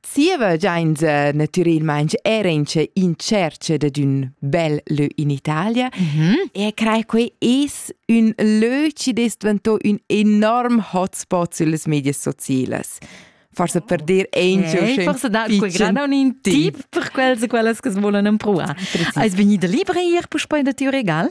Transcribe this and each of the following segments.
Zieva giainza natürelmaing era in che in cerca dad ün bel lö in Italia mm-hmm. e crei quei es ün lö chi es dvantò ün enorm hotspot süllas medias socielas. Forse per dir Angel okay, forse da quei gran un tip per quels e quellas che volen empruar. Eis vegnida libra ier puspei da tiu regal?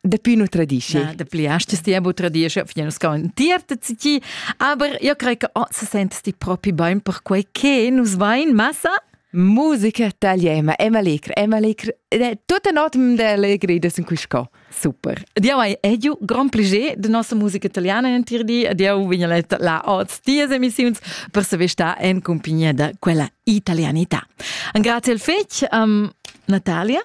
Dapi nu tradischi. Na, dapi astes ti abu tradischi, fin nus con tierta ti. Aber io crei che oh, se sentes ti propi bain per quei che nus vain massa? Musica tagliema, Emma Legre, Emma Legre, tutta notam de allegria in cui sco. Super. Diau hai edu grand plaisir de nossa musica italiana in tir di, diau vigna letta la oz tias emissiuns per saver sta en compagnia da quella italianità. Grazie al fec, um, Natalia.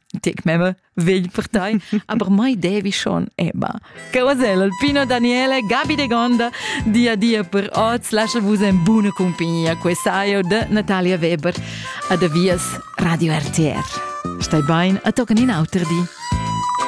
Tic meva vegl per tai, aber mai devi schon eba. Che wasel Alpino Daniele, Gabi De Gonda, dia dia per oz, lascia vus en buna compagnia, quesaio de Natalia Weber. Adavias Radio RTR. Stai bain, a toccan in auter di.